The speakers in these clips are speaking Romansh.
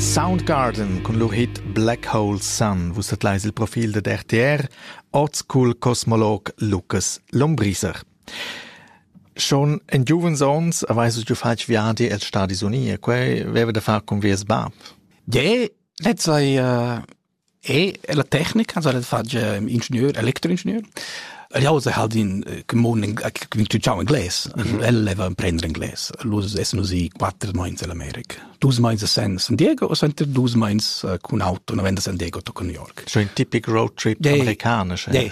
Soundgarden cun lur hit Black Hole Sun vus tadlais il profil dad RTR, oz cul cosmolog Lucas Lombriser. Schon in giuvens ons avais du fatg viadi els Stati Uniti e quei veva da far con vies bab. Ja, letzai uh, E la tecnica s'ha fatg ingenieur, electroingenieur. El jau se halt in commun intuiziau inglés. El leva prender inglés. Lus es musik quattro meins in America. Dus meins a San Diego o senter dus meins cun auto, na venda San Diego to New York. Schon ein typisch road trip yeah, amerikanisch. Yeah.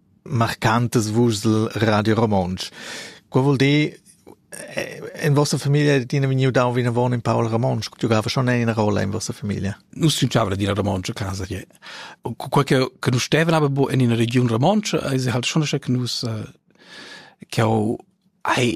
marcantas vuschs el Radio Romontsch. Quei vul dir, in vostra famiglia è tina vegniu dau vinavon in Paul Ramonsch, giocava schon eine Rolle in vostra famiglia. Nus giocava d'ina Ramonsch a casa che. Quei che che nus stevan aber bo in ina region Ramonsch, ei se halt schon che nus che ho ai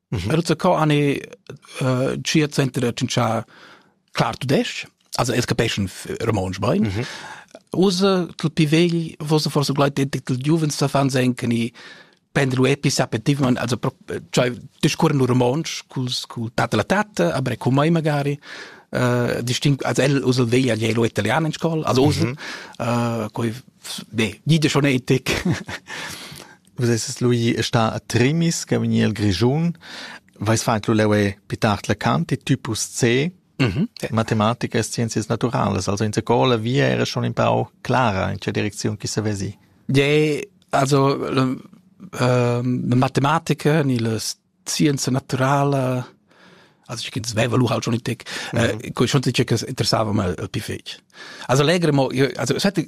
Era za co ani uh, cia center da tschintschà clar tudesc, also es capeschan romontsch bain. Mm -hmm. Usa tel pi vegl, vosa forse gleit tel giuvens da fan senken i prender lu epis appetivan, also cioè discurren lu romontsch culs cul tata la tata, aber cum mai magari. Uh, distinct, also el usa veglia gli lo italiano in scuola, also usa, mhm. uh, coi, ne, gide schon etic. Vus esses lu ì e stà a Trimis, che vegni el Grischun. Veis fatg lu leu e pli tard la Kant e typus C, matematica e scienzias naturalas. Also in scola via era schon in pau clara in tgè direcziun chi savesi. Ja, also ehm, le matematica ni le scienza naturala also ich ins wäre lu halt schon nicht äh, schon sicher interessava mal piffig also legere mo also es hätte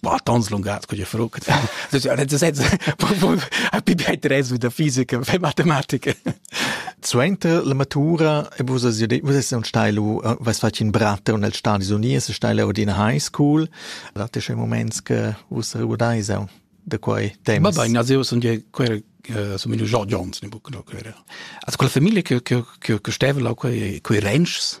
war tons lungas con je fruc ha pi bei resu da fisica fe matematica Suenter la matura e vus has detto, vus hast un stilo, was fat in Bratte und als Stadis Unies, stile od in high school. Date schon moments che vus ricordais da quei temas. Vabbè, in aseo sono quel som il George Jones, ne bucno quella. Also quella famiglia che che che steva là quei quei ranchs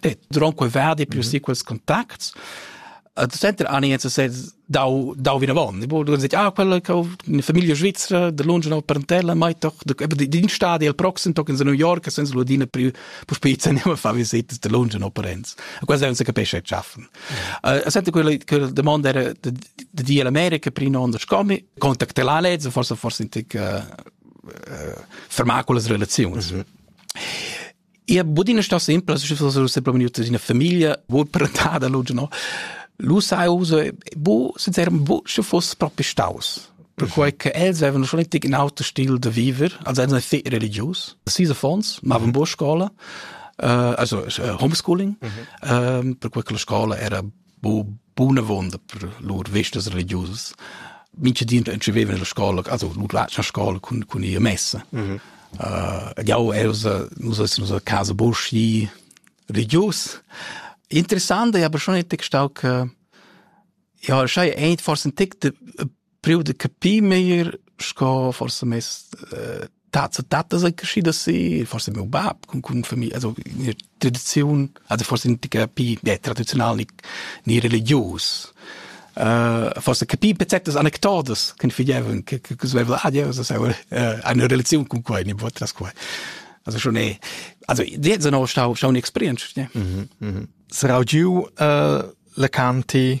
det dronque verdi più mm -hmm. si quels contacts Uh, center ani jetzt se dau dau vina von bo du dit ah quella che in famiglia svizzera de lunge no parentella mai doch de di din stadi al proxim tok in New York senza ludina più pus pizza ne ma fa visite de lunge no parents a quasi non se capisce schaffen uh, sente quella quella domanda era de de di America prima on scomi contactela lezzo forse forse in tic uh, uh, fermaculas relazioni mm -hmm. Ia bod ina stossa simpla, se propi vegniu ina famiglia, bod parentada, lu no. Lu sai uso, bu, sincerament, bu, sche foss propi staus. Perquei che els avevano schon richtig in auto stil de viver, also erano sehr religiös. Sis affons, mavan buca scola, uh, also uh, homeschooling, mhm. uh, perquei che la scola era bunavonda per lur vestas religiusas. Mincha di entschevevan la scola, also nu lascian scola cun cun ir a messa. Mm -hmm. uh, jau els nus es nus a casa boschi religius. Interessant, aber schon etg stau che ja schei ein forse ein tic de priu de capir meglier sco forse mes äh, tats e tatas ei geschieda si, forse meu bab con con familie, also in tradizion, also forse nicht capir ja, tradizional ni ni religius. Uh, forse capir certas anecdotas che figliavon che che sveva ah Dios das eine Relation con quei ne vot das quei also schon eh also jetzt noch stau stau experience ja mhm mhm sarau giu uh, la canti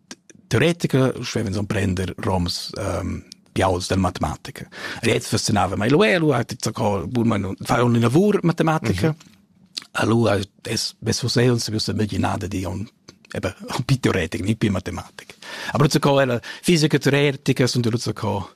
teoretica schevens emprender roms um, piauls della matematica. Riez fascinava mai lu elu, hat zacco burma fa un lavur matematica. Mm -hmm. Allora es beso se un se biusa immaginada di un eben un più teoretic, nicht più matematik. Aber so co la fisica teoretica sunt lu zacco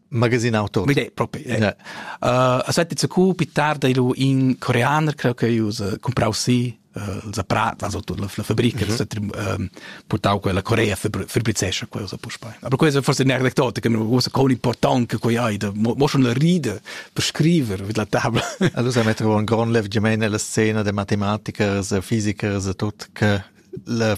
Magasin auto. Vide, propi. Yeah. Uh, aspetti, se cu più tarda ilu in coreaner creo che use comprau sì il zaprat, also la, la fabrica, mm -hmm. um, portau quella Corea fabrizesce quella puspei. Aber questo è forse un'aneddotica, ma questo con importante che hai, mo schon la ride per scrivere mit la tabla. Allora mettere un gran lev gemene la scena de matematiker, fisiker, tot che la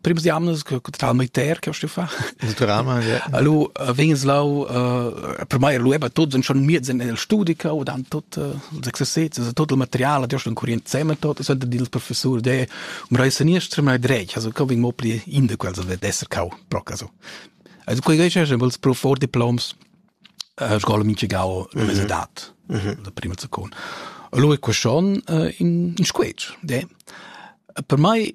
prims di amnas che total militär che sto fa il drama ja allo vegns lau per mai lu eba tots schon miez in el studica o dan tot els exercits also tot il material der schon kurient zeme tot ist der dil professor de um rei seniestra mai dreig also kommen mo pli in de quels wird esser kau proc also also quei geisch schon als prof for diploms scola min chegau dat la prima zakon Lo è questo in in squetch, de. Per mai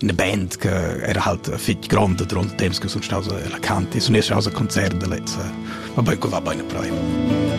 eine Band che era halt fitg grande durante temps che sun staus la canti sun esser aus a concert da lezza ma ben qua va bene prem